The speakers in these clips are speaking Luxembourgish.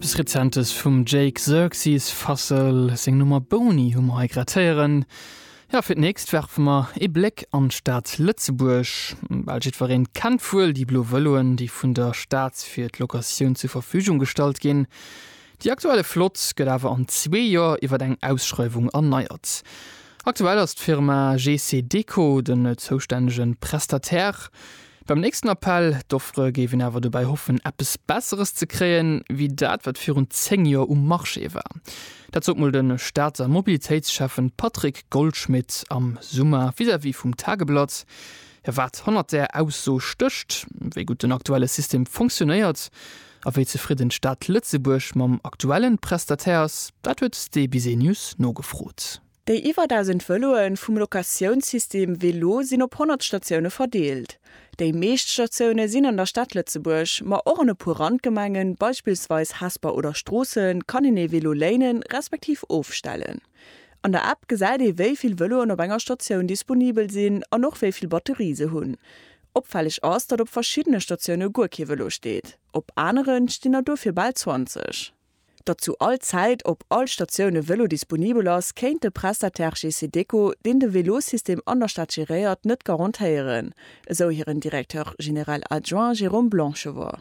Eppes Rezentes vum Jake Xerxes Fassel, seng Nummer Boni hu mer hei grad héieren. Jo, fir d'nächst werfe mer ee Bléck an d'Stad Lëtzebuerg. Bal jiddwereen kennt wuel déi blo Vëloen, déi vun der Stad fir d'Locatioun zur Verfügung gestallt ginn. Déi aktuelle Flott gëtt awer an zwee Joer iwwer eng Ausschreiwung erneiert. Aktuell ass d'Firma GC Deco den zoustännege Prestataire. Beim nächsten Appell d'offre géif een awer dobäi hoffen, eppes Besseres ze kréien, wéi dat, wat virun zéng Joer um Marché war. Dat sot mol de Stater Mobilitéitsschäffe Patrick Goldschmidt am Summer vis-à-vis vum Tageblatt. Jo, wat hannert där Ausso stécht, wéi gutt den aktuelle System fonctionéiert, A wéi zefridden d'Stad Lëtzebuerg mam aktuellen Prestataire ass, dat huet de Business nogefrot. Déi iwwer 1.000 Vëloe vum Locatiounssystem Vélo sinn op 100 Statioune verdeelt. Déi meescht Statioune sinn an der Stad Lëtzebuerg, ma och an e puer Randgemengen, beispillsweis Hesper oder Stroossen, kann een ee Vélo léinen, respektiv ofstellen. An der App gesäit ee wéi vill Vëloen op enger Statioun disponibel sinn an och wéi vill Batterie se hunn. Opfälleg ass, datt op verschiddene Statioune guer kee Vëlo steet, op anere stinn der dofir bal 20. Datt zu all Zäit op all Statioun e Vëlo disponibel ass, kéint de Prestataire GC-Déco, deen de Vélosystem an der Stad geréiert, net garantéieren, esou hiren Directeur général adjoint Jérôme Blanchevoix.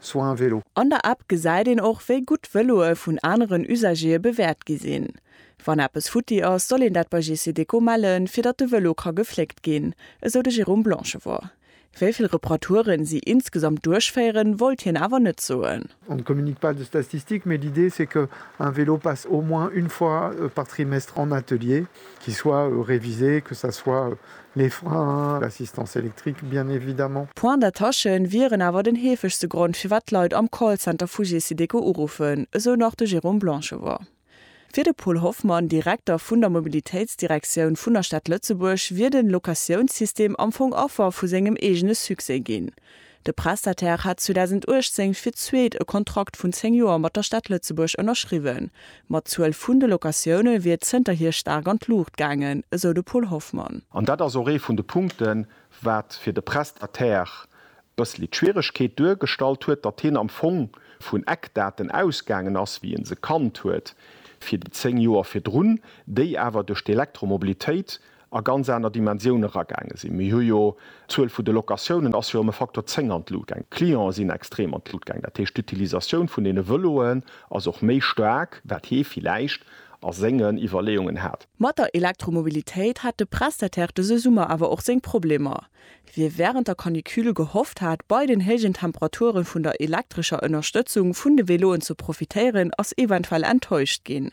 soit un vélo. An der App gesäit een och, wéi gutt d'Vëloe vun aneren Usagere bewäert gi sinn. Wann eppes futti ass, soll een dat bei Gecedeco mellen, fir datt de Vëlo ka gefléckt ginn, esou de Jérôme Blanchevort. Wéi vill Reparaturen si insgesamt duerchféieren, wollt hien awer net soen. On ne communique pas de statistiques, mais l'idée c'est que un vélo passe au moins une fois par trimestre en atelier, qu'il soit révisé, que ça soit Les freins, l'assistance électrique bien évidemment. D'Points d'attache wieren awer den heefegste Grond firwat d'Leit am Callcenter vu Gesiteco uruffen, esou nach de Jérôme Blanchevort. Fir de Paul Hoffmann, Direkter vun der Mobilitéitsdirektioun vun der Stad Lëtzebuerg, wier den Locatiounssystem am Fong Affer vu sengem eegene Succès ginn. De Prestataire hat 2018 fir d'zweet e Kontrakt vun 10 Joer mat der Stad Lëtzebuerg ënnerschriwwen, ma d'Zuel vun de Locatioune wier zënterhier staark an d'Luucht gaangen, esou de Paul Hoffmann. An dat ass och ee vun de Punkten, wat fir de Prestataire e bëssli d'Schwieregkeet duergestallt huet, datt hien am Fong vun Eckdaten ausgaangen ass, wéi e se kannt huet fir déi 10 Joer virdrun, déi awer duerch d'Elektromobilitéit a ganz aner Dimensioune eragaange sinn. Mir hu jo, d'Zuel vun de Locatiounen ass jo ëm e Facteur 10 an d'Lut gaang, d'Clientë sinn extrem an d'Lut gaang, dat heescht d'Utilisatioun vun deene Vëloen ass och méi staark, wat hie villäicht a sengen Iwwerleeungen hat. Mat der Elektromobilitéit hat de Prestataire dëse Summer awer och seng Problemer. Wie wärend der Canicule gehofft hat, bei den héijen Temperature vun der elektrescher Ënnerstëtzung vun de Veloen ze profitéieren, ass eventuell enttäuscht ginn.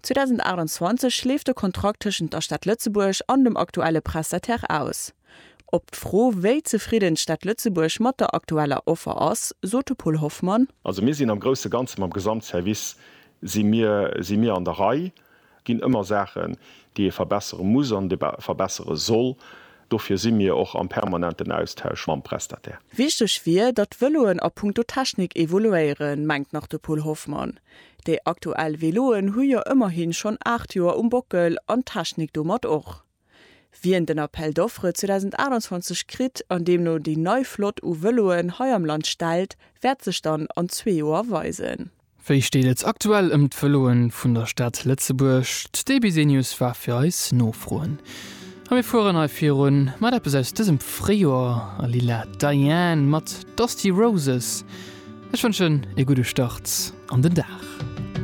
2028 leeft de Kontrakt tëschent der Stad Lëtzebuerg an dem aktuelle Prestataire aus. Op d'Fro, wéi zefridden d'Stad Lëtzebuerg mat der aktueller Offer ass, sot de Paul Hoffmann. Also mir sinn am grousse Ganze mam Gesamtservice si mir si mir an der Rei. Et ginn ëmmer Saachen, déi ee verbessere muss an verbessere soll. Dofir si mir och am permanenten Austausch mam Prestataire. Wichteg wier, datt d'Vëloen a punkto Technik evoluéieren, mengt nach de Paul Hoffmann. Déi aktuell Veloen hu jo ëmmerhin schonn 8 Joer um Bockel an d'Technik domat och. Wien den Appel d'offres 2028 kritt an deemno déi nei Flott u Veloen hei am Land stellt, wäert sech dann an zwee Joer weisen. Wéi steet et aktuell ëm d'Veloen vun der Stad Lëtzebuerg? D'Debbie Senius war fir eis nofroen. A mir fueren hei virun mat eppes aus dësem Fréijoer, a lila, Diane mat Dusty Roses. Ech wënschen ee gudde Start an den Dag.